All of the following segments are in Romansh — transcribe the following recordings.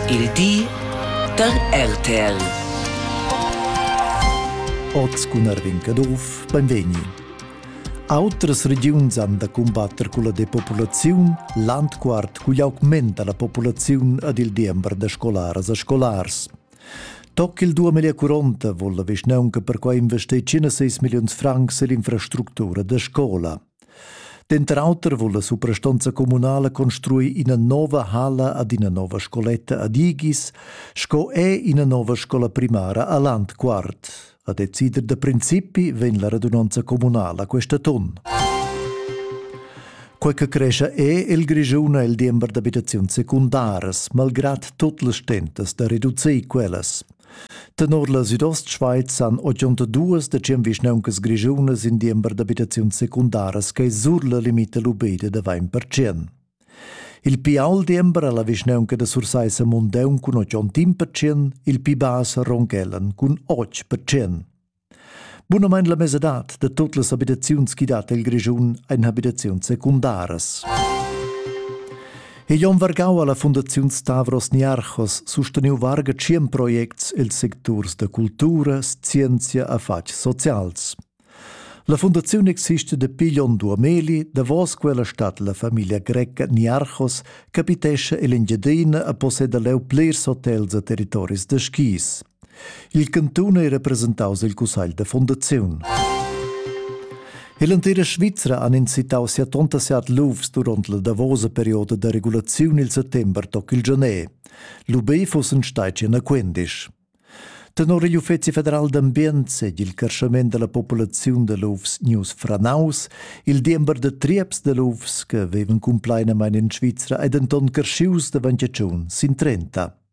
Il di da RTL. Oz cun Arvin Caduff, benvegni. Autras regiuns han da cumbatter culla depopulaziun, Landquart cugl augmenta la populaziun ad il diember da scolaras e scolars. Toc il 2040 volla vischnaunca perquai investir 5 milliuns francs ell'infrastructura da scola. Denter auter vul la suprastonza communala construir ina nova halla ad ina nova scoletta ad Igis sco è ina nova scola primara a Landquart. A decider da principi vegn la radunanza communala questa ton. Quei che cresce è il Grischun e il diember d'abitazioni secundaras, malgrad tot las stentas da reducir quellas. Tenor la Südostschweiz han 82 decem vischnauncas grischunas in diember d'abitaziuns secundaras che sur la limita lubeda da 20%. Il pi ault diember ha la vischnaunca da Sursaissa Mundeun cun 81%, il pi bass Ronghellen cun 8%. Bunamain la mesadad da tot las abitaziuns chi dat el Grischun ein abitaziuns secundaras. E Jon Vargau alla Fundaziun Stavros Niarchos susteniu varga tschien projects els secturs da cultura, scienzia e fatgs socials. La fundaziun existe dapi Jon Duameli, davos quella stat la familia greca Niarchos, capitescha ell'Engiadina e posseda leu plirs hotels e territoris da skis. Il cantun ei representaus el cussegl da fundaziun. L'entira Svizra han incitau sia tonta siat lufs duront la davosa perioda da regulaziun il settember toc il Genè. L'UB fussen stati en a Quendisch. Tenor igl Uffeci federal d'ambient sed il crescement della populaziun de lufs news franaus, il diember de trieps de lufs che veven cumplainamein in Svizra ei denton crescius davant tschun sin trenta.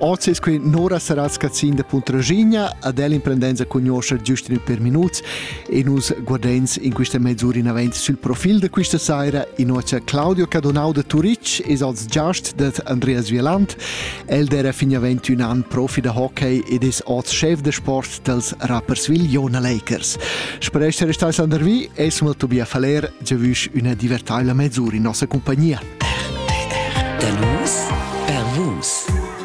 Oz es quai Nora Saratz Cazzin da Puntraschigna, ad el imprendenza cugnuoscha giust in per minuts e nus guardens in quista mezz'ura in avanti sul profil da quista saira in ocha Claudio Cadonau da Turic es als giast dad Andreas Vieland. El d'era fin avant ün an profi da hockey ed es oz chef da sport dals Rapperswil Jona Lakers. Sper esser stais andervi es mal Tobias Faller giavüsch üna divertaivla mezz'ura in nossa compagnia. Der Los per Vus.